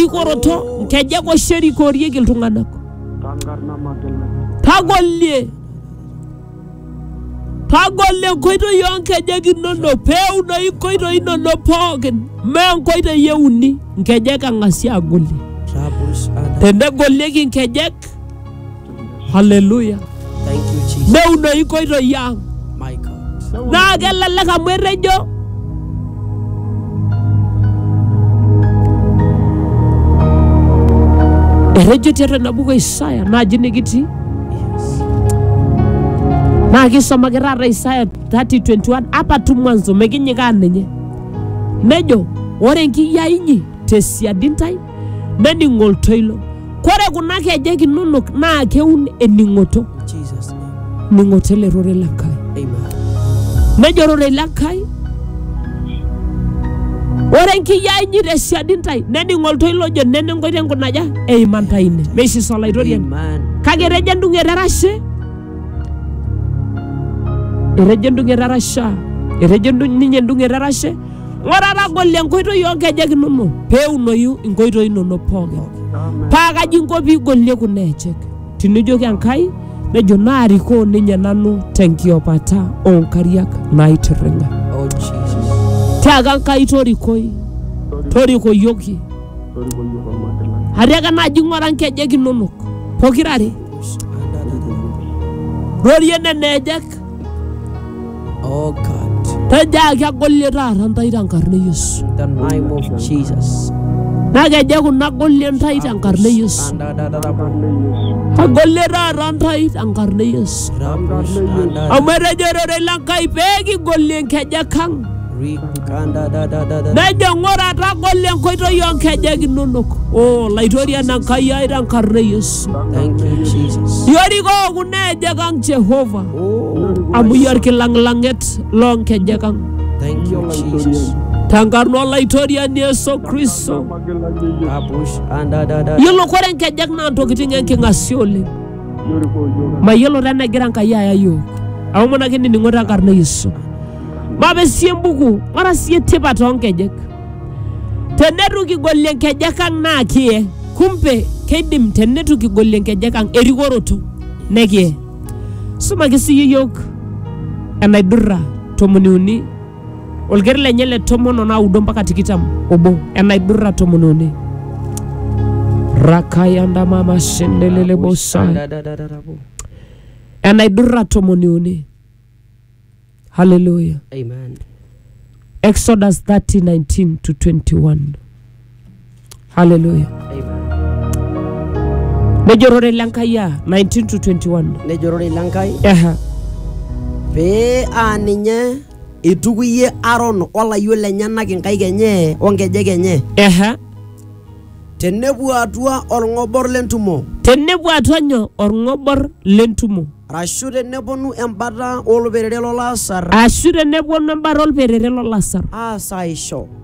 enkiroroto nkejek oshi erikorieki iltung'anak tagolie tagolie nkoitoi oonkejek inonok peeunoyu nkoitoi inonok pookin mee nkoitoi euni nkejek ang'asi agolie tenegolieki nkejek haleluya Thank you, Jesus. neunoyu nkoitoi ang My God. naa kelelek amu etejo etejo tiatua ina buku e isaya naaji nikitii Yes. naa kisomaki taata isaya 3021 apa tu mwanzo mekinyikaa ninye nejo ore enkiyia inyi tesiadi ntae nening oltoilo kore kuna kejek inonok naa keun ening'oto In Jesus' name. ning'oto ele rorei le Nkai Amen. nejo rorei le Nkai ore enkiyia inyi te siadi ntae nening oltoilo ojo nena enkoitoi nkunaja eima ntae ine meisisa olaitoriani Amen. kake etejo endung'et erashe etejo endung'et erasha etejo endu- ninye endung'et erashe Ng'ura tagolo enkoitoi oo nkejek inono pee eunoyu inkoitoi inono pookin. Paa kaji inko pee igolie kuna ejek? Tinijoki Enkai nejo naarikoo ninye nanu tenkiopata oo nkariak naitirring'a. Oh, Jesus. Tiaka Enkai torikoi, torikoyioki. Atiaka naaji ng'ura nkejek inonok pokirare. Rorie nena ejek Oh God. Tejaaki agolie taata ntae tenkarna e Yesu. In the name of Jesus. Nakeje kuna agolie ntae tenkarna e Yesu. Agolie taata ntae tenkarna e Yesu. Amu etejo ororei le Nkai pee kigolie nkejek ang'. Nejo ng'ura tagolo enkoitoi oo nkejek inonok. O laitorian Enkai ai tenkarna e Yesu. Thank you, Jesus. Yorikoo kuna ejek ang Jehova Oh, amu iyie olkilang'lang'et loo nkejek ang. thank you, Jesus. Tenkarna olaitoriani Yesu Kristo. Kapush, anda, da, da. Yiolo kore nkejek naa ntokitin enking'asia oleng. Mayiolo taa enegira Enkai aya yiok. Aomonaki enining'o tenkarna e Yesu. Maape sii embuku, ng'ura sii tipat oonkejek. Teneitu kigolie nkejek ang' naa kiye. Kumbe keidim teneitu kigolie nkejek ang' erikoroto nekiye. Sumaki sii iyie iyiook enaidurra tomoniuni. olker lenye le tomon o naudo mpaka tikitam obo enaidurra tomon uni rakayandamama shendelelebosai Shadadadadadabu. enaidurra tomoni uni haleluya Amen. exodus 30 19 to 21 haleluya nejo ororei le nkai a 19 to 21 nejo ororei le nkai Aha. pee aa ninye eitukuyie aron olayio lenyenak inkaik enye onkejek enye Aha. tenepuo atua olng'obor lentumo tenepuo atua nyoo orng'obor lentumo arashu teneponu embata olperere lolasar ashu teneponu embata olperere lolasar aasaisho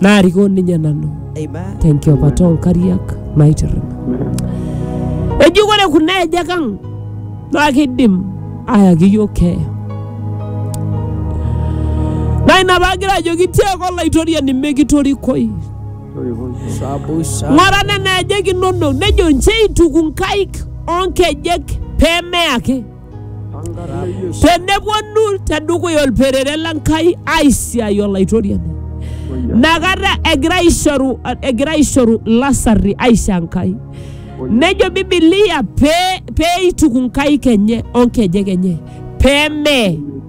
naarikoo ninye nanu Amen. tenkiopata oonkariak naitirring eji ore kuna ejek ang naa kidim ayaki iyiok keeya naa ina paagira ajoki tiaaka olaitoriani mekitorikoi Sabu sa. ng'ora nena ejek inonok nejo nche eituku nkaik oonkejek pee meya ake tenepuonu tedukuya olperere le Nkai aisiai olaitoriani nakata egira aishoru egira aishoru lasarri aisho Enkai nejo Biblia pee peituku nkaik enye onkejek enye pee mee